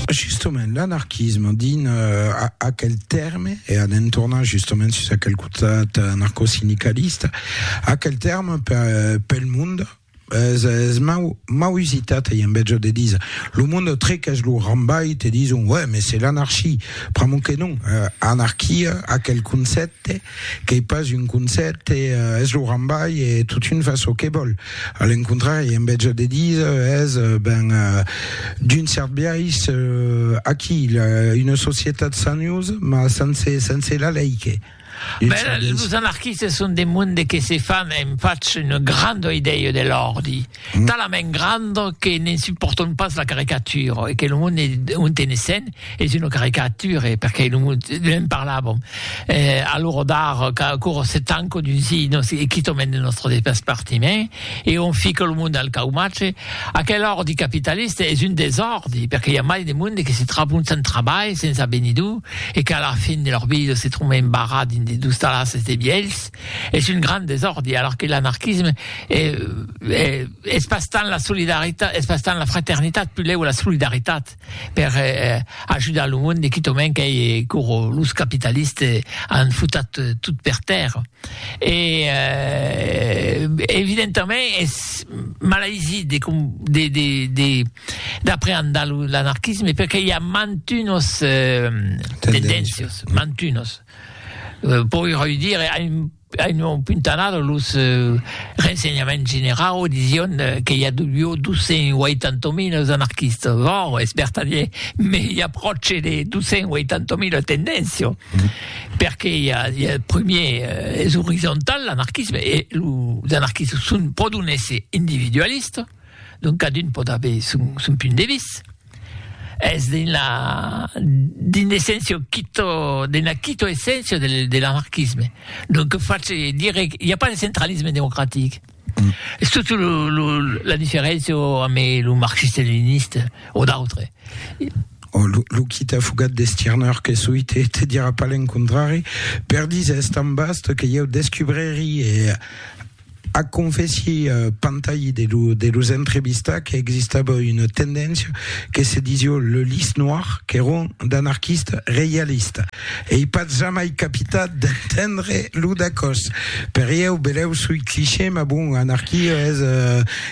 Justement, l'anarquisme, dins aquel tèrme, e a ne'n tornar justement sus aquel cotat anarcosindicalista, aquel tèrme pel monde es, es mau, mau usitat, ei en vètge de díser, lo monde trequèch lo rambalh, te dison, uèi, mès es l'anarchie, pr'amor que non, anarquia, aquel concèpte, qu'ei pas un concèpte, es lo rambalh e totun fa çò que vòl. A l'encontrari, en vètge de díser, es, ben, d'un cèrt biais, aquí, una societat sanhos, mas sense, sense la lei, que. Ben, los anarquistes son de monde que se fan, en fach, una granda idèia de l'òrdi, talament granda que ne'n supòrtan pas la caricatura, e que lo monde ont e ne sèn, Es una caricature, perqué non ne'n parlàvom. Eh, a l'ora d'ara, qu'aquò se tanca dins i, nos, e quitò mèn de nòstre despartiment, e on fica lo monde al caumatge, aquel òrdi capitalista es un desòrdi, perqué i a mai de monde que se trabon sans trabalh, sens avenidur, e qu'a la fin de lor vida se tròba embarrat dins de dus talasses de vielhs, es un grand desòrdi, alara que l'anarquisme e, e, es pas tant la solidaritat, es pas tant la fraternitat, pulèu la solidaritat. per ajudar lo monde quitament qu'ei coro los capitaliste an futat tot per tèrra e evidentament es malaisit de com de de de d'apreandar lo l'anarquisme perque i a mantunos tendéncios mantunos pòi roi dire Avián puntanat los rensenhaments generau disión que i avió 280.000 anarquistas, vòr, es vertadier, me i a pròche de 280.000 tendencion, perque i a, i a prumier, es orizontal l'anarquisme, e los anarquistas son pro d'un èsser individualista, donc cadun pòt aver son, son punt de vista. Es d'una d'un essèncio quito d'una quito essèncio de de l'anarquisme. Lo que face dire i a pas de centralisme democratic. Es totu lo lo la diferéncia amb lo marxiste-leniniste o d'autres. Oh, lo lo qui t'a fugat de Stirner que soi te te dira pas l'encontrari. Per dis es tan vast que ieu descubreri e Ac confèssi Pantayi de los entrevistats qu'existava una tendéncia que se disió le Lys Noir, qu'èron d'anarquistes reialistes. Ei pas jamai capitat d'entendre lo dacòs. Per ieu, belèu soi cliché, mas bon, anarquia es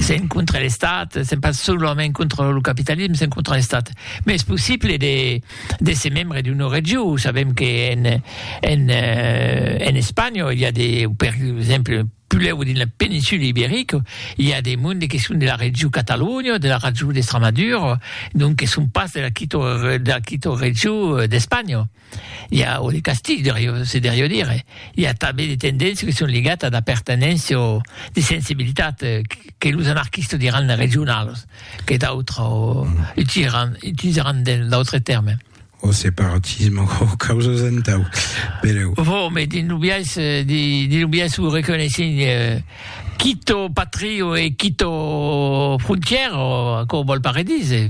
S'en contra l'Estat, s'en pas solament contra lo capitalisme, s'en contra l'Estat. Mais es possible de, de se membre d'una regió. Sabem que en, en, euh, en Espanya, il y a des, per exemple, puleu dins la péninsule ibérique, il y a des mondes qui sont de la regió Catalunya, de la regió d'Estramadura, donc que sont pas de la quito, de la quito regió d'Espanya. i a o de castig, deurió, se deurió dire. I a tanben de tendéncias que son ligat a d'apertenéncia o de sensibilitat que los anarquistas diràn regionalas, que d'autres utilizaràn, utilizaràn d'autres tèrmes. O separatisme o causas entau, pereu. Vo, me dins lo biais, dins lo biais o reconeissent quito patrio e quito frontièra, o aquò vòl pas redire.